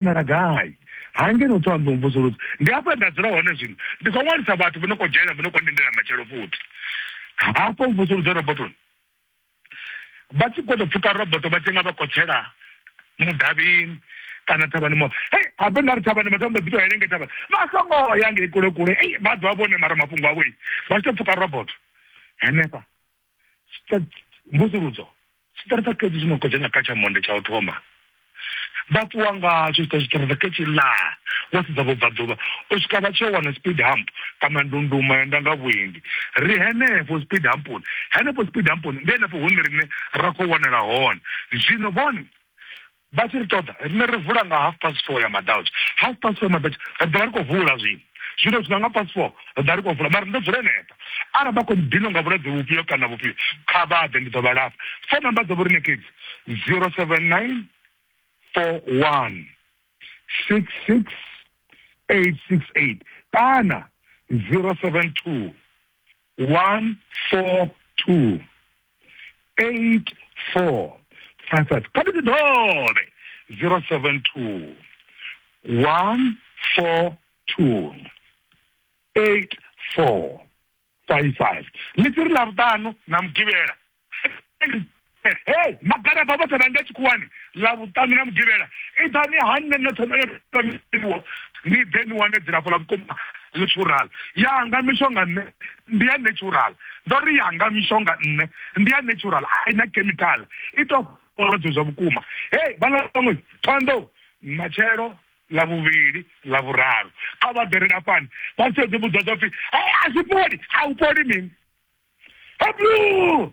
wanala gai hangeno u ṱoḓa u mvusuludza ndi hafho nda dzula hone zwino ndi khou ṅwalisa vhathu vho no khou dzhena vho no khou lindela matshelo futhi hafho mvusuludzo robotoni vha tshi khou tou pfuka roboto vha tshi nga vha khotshela mudavhini kana thavhani mo hei habe nda ri thavhani vhathu vha mbo ḓi tou henenge thavhani vha songo ya ngei kule kule ei vha ḓo vha vhone mara mafhungo avho vha tshi tou pfuka roboto henefha mvusuludzo tshiṱaratsa ketshi tshi no khou dzhena kha tsha monde tsha u thoma vha ṱuwa ngatsho tshiṱaratsa ketshi la vha sedza vhubvaḓuvha u swika vha tshi yo wana speed hump kana ndunduma ya ndanga vhuendi ri henefho speed hamponi henefho speed hamponi ndi henefho hune rine ra khou wanala hone zwino vhone Vha tshi ri ṱoḓa, riṋe ri vula nga half past four ya maḓautsha. Half past four ya maḓautsha, ri ḓo vha ri khou vula zwino. Zwino zwi nga nga past four, ri ḓo vha ri khou vula, mara ni ḓo dzula henefha. Arali vha khou ni dinwa nga vhulwadze vhufhio kana vhufhio, kha vha ḓe, ndi ḓo vha lafha. Phone number dza vho riṋe ke edzi, 079 41 66 868 kana 072 142 84 55 kha ndi dovhe 072 142 84 55 ḽitsi ri ḽa vhuṱanu na mugivhela hey magaraba vhoṱhe vha nga tshikhuwani ḽa vhuṱanu na mugivhela iḓani ha nṋe noṱhe noṱhe ni ḓe ni wane dzilafho ḽa vhukuma ḽi tshurala yanga mishonga nṋe ndi ya natural ndo ri yanga mishonga nṋe ndi ya natural a ina chemical i to fholodzo zwa vhukuma hey vhala vhaṅwe thondo matshelo ḽa vhuvhili ḽa vhuraru a vha ḓerela fhani vha sedze vhudzwa zwa pfhi a zwi fholi a u fholi mini heblu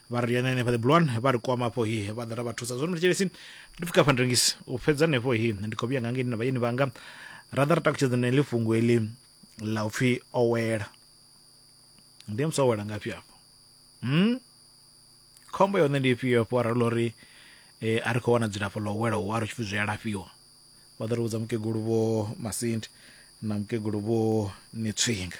vha ri yana henefha ḓibulwani vha ri kwama afho hi vha ḓa ra vha thusa zwone thetshelesi ndi pfuka afha ndrengisi u fhedza henefho hi ndi khou vhuya nga ngei na vhayeni vhanga ra ḓa ra takutshedza na heḽi fhungo heḽi ḽa upfhi owela ndi musi owela ngafhi afho hmm? khombo ya hone ndi ifhio afho arali ḽo ri eh, a ri khou wana dzilafho ḽa owela hu a ri tshi pfi zwi a lafhiwa vha ḓo ri vhudza mukegulu vho masindi na mukegulu vho nitswinga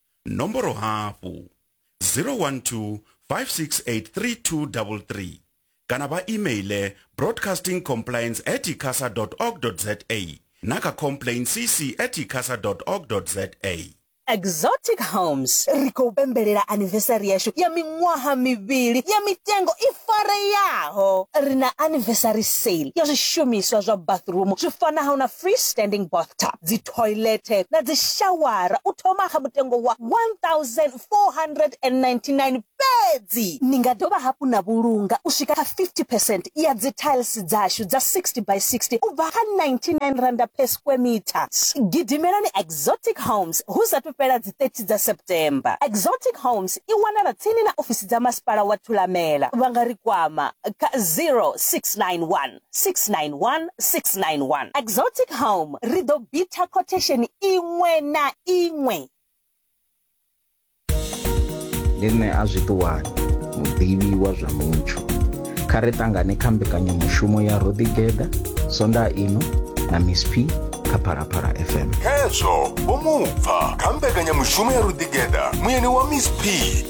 nomboro hafhu 012 5683233 kana vha emaile broadcasting compliance at icasa org za na kha complain cc at icasa org za exotic homes ri khou pembelela anivesari yashu ya miṅwaha mivhili ya mitengo i fareyaho ri na anivesari sale ya zwishumiswa zwa bathroom zwi fanaho na free standing bathtub dzi thoilethe na dzishawara u thoma kha mutengo wa R1,499 fhedzi. Ni nga dovha hafhu na vhulunga u swika kha 50 percent ya dzithailisi dzashu dza 60 by 60 u bva kha R99 per square metre. Gidimelani Exotic Homes hu sa athu fhela dzi 30 dza September. Exotic Homes i wanala tsini na ofisi dza Masipala wa Thulamela. Vha nga ri kwama kha 0691. 691 691. Exotic Home, ri ḓo bitha quotation iṅwe na iṅwe. Ndi nṋe a zwi ṱuwani, muḓivhi wa zwa mutsho. Kha ri ṱangane kha mbekanyamushumo ya Ro Ḓigeḓa, Sonda ino na Miss P kha Phalaphala FM. Hezwo, vho mu pfa kha mbekanyamushumo ya Ro Ḓigeḓa, muyeni wa Miss P.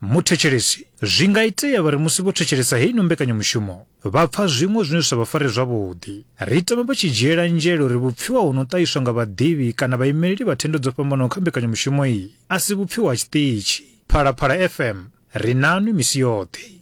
Muthetshelesi, Zwi nga itea vha ri musi vho thetshelesa heino mbekanyamushumo vha pfa zwiṅwe zwine zwi sa vha fare zwavhuḓi. Ri tama vha tshi dzhiela nzhele uri vhupfiwa ho no ṱahiswa nga vhaḓivhi kana vhaimeleli vha thendo dzo fhambanaho kha mbekanyamushumo iyi a si vhupfiwa ha tshiṱitshi. Phalaphala FM, ri nanwi misi yoṱhe.